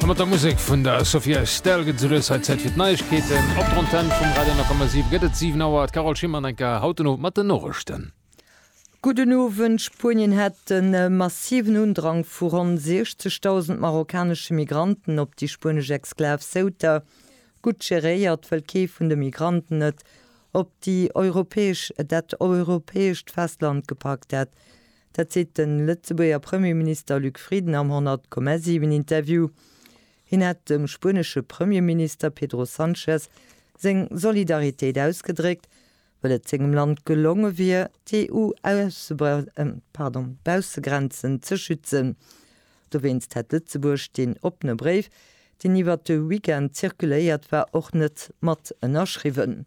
A mat der Musek vun der Sophia Estelle gëtt et esoulues hei Zäit fir d'Neiegkeeten op der Antenn vum Radio 10,7. Gëtt et 7 Auer. D'Carole Schimmer enk a haut den Owend mat den Noriichten. Gudden Owend. Spuenien hat e massiven Undrang vu ronn 60.000 marokkanesche Migranten op déi spuenesch Exklav Ceuta. Gutt geréiert, wëll kee vun de Migranten et op déi europäesch, dat europäescht Festland gepackt hätt, Dat seet de Lëtzebuerger Premierminister Luc Frieden am 100, 7 Interview. Hien hätt dem spuenesche Premierminister Pedro Sanchez seng Solidaritéit ausgedréckt, well et sengem Land gelonge wier, d'EU-Baussegrenzen ze schützen. Dowéinst hätt Lëtzebuerg deen oppene Bréif, deen iwwert de Weekend zirkuléiert war, och net mat ënnerschriwwen.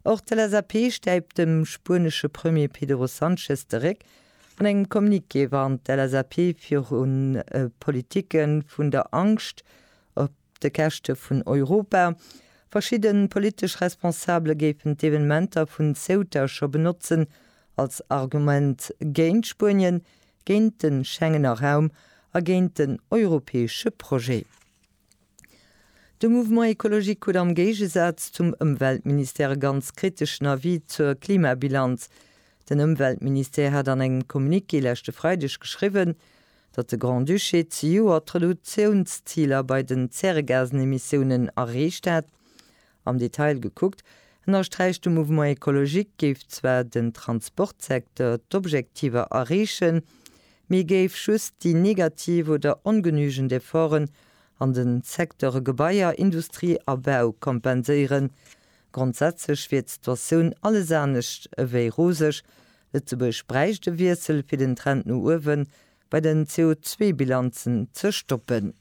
Och d'LSAP stäipt dem spuenesche Premier Pedro Sanchez de Réck. An engem Communiqué warnt d'LSAP viru Politike vun der Angscht op de Käschte vun Europa. Verschidde politesch Responsabele géifen d'Evenementer vun Ceuta scho benotzen als Argument géint Spuenien, géint de Schengener Raum a géint den europäesche Projet. De Mouvement Ecologique krut am Géigesaz zum Ëmweltministère e ganz kriteschen Avis zur Klimabilanz. Den Ëmweltministère hat an engem Communiqué leschte Freideg geschriwwen, datt de Grand-Duché zejoert d'Reductiounsziler bei den Zäregasenemissiounen erreecht hätt, Am Detail gekuckt, ënnersträicht de Mouvement Ecologique, géif zwar den Transportsecteur d'Objektiver erreechen, mee géif just déi negativ oder ongenügend Efforten an de Secteure Gebaier, Industrie a Bau kompenséieren. Grondsätzlech wier d'Situatioun alles anescht ewéi roseg. Lëtzebuerg bräicht e Wiessel, fir den Trend no uewe bei den CO2-Bilanzen ze stoppen.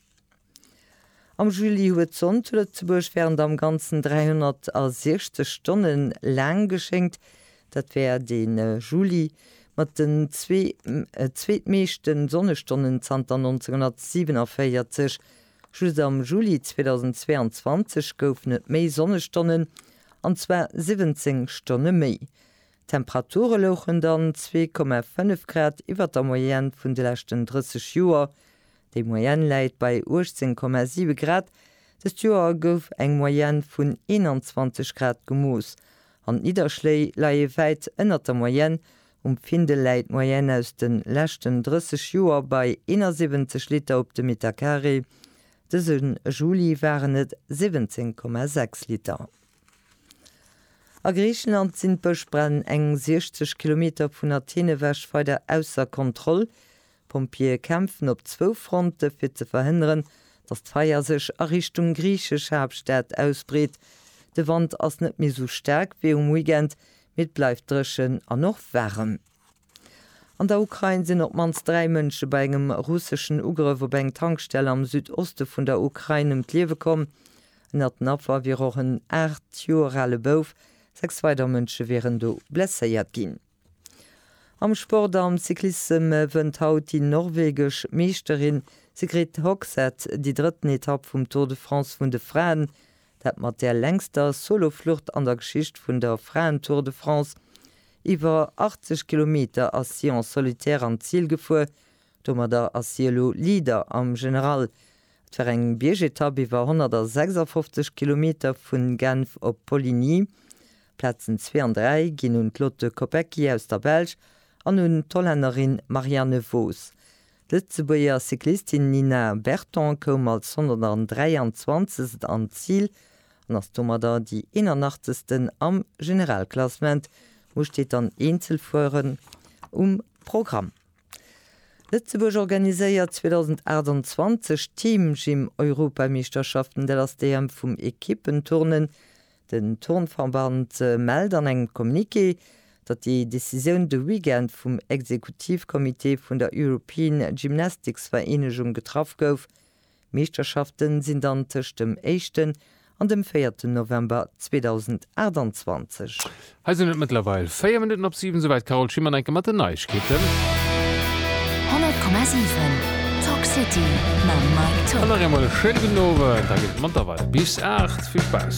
Am Juli huet d'Sonn zu Lëtzebuerg wärend am Ganzen 360 Stonne laang geschéngt. Dat war de Juli mat den zwee zweetmeeschte Sonnestonnen zanter 1947. Just am Juli 2022 goufen et méi Sonnestonnen, an zwar 17 Stonne méi. D'Temperature louchen dann zwee Komma fënnef Grad iwwer der Moyenne vun de leschten 30 Joer. Déi Moyenne läit bei 18 Komma 7 Grad. Dëst Joer gouf eng Moyenne vun 21 Grad gemooss an d'Nidderschléi leie wäit ënnert der Moyenne. Um Findel läit d'Moyenne aus de leschten 30 Joer bei 71 Liter op de Metercarré. Dëse Juli waren et 17,6 Liter. A Griicheland sinn d'Bëschbränn eng 60 Kilometer vun Athen ewech weider ausser Kontroll. D'Pompjeeë kämpfen op zwou Fronte fir ze verhënneren, datt d'Feier sech a Richtung griichesch Haaptstad ausbreet. De Wand ass net méi esou staark wéi um Weekend, mee et bleift dréchen an och waarem. An der Ukrain sinn op d'mannst dräi Mënsche bei engem russeschen Ugrëff op eng Tankstell am Südoste vun der Ukrain ëm d'Liewe komm. Ënnert den Affer wier och en aacht Joer ale Bouf. Sechs weider Mënsche wieren do blesséiert ginn. Am Sport, Am Cyclissem wënnt haut déi norwegesch Meeschterin Sigrid Hogseth déi drëtten Etapp vum Tour de France vun de Fraen. Dat mat där längster Soloflucht an der Geschicht vun der Fraen-Tour de France. Iwwer 80 Kilometer ass si en solitaire an d'Zil gefuer. Domadder ass si elo Leader am General. Et war eng Biergetapp iwwer 156 Kilometer vun Genf op Poligny. D'Plazen zwee an dräi ginn un d'Lotte Kopecky aus der Belsch an un d'Hollännerin Marianne Vos. D'Lëtzebuerger Cyclistin Nina Berton koum als 123. an d'Zil an ass domadder déi 81. am Generalklassement. Muer steet dann Eenzelfueren um Programm. Lëtzebuerg organiséiert 2028 d'Team Gym Europameeschterschaften, dat ass d'EM vum Ekippenturnen. Den Turnverband mellt an engem Communiqué, datt déi Decisioun de Weekend vum Exekutivcomité vun der European Gymnastics Vereenegung getraff gouf. D'Meeschterschafte sinn dann tëscht dem éischten an dem véierten November 2028. Hei sinn et mëttlerweil 4 Minutten op 7, souwäit d'Carole Schimmer enke mat den Neiegkeeten. 100,7 Talk City mam Mike Tock. An nach eemol e schéine gudden Owend. Da geet et manter weider bis 8. Vill Spaass!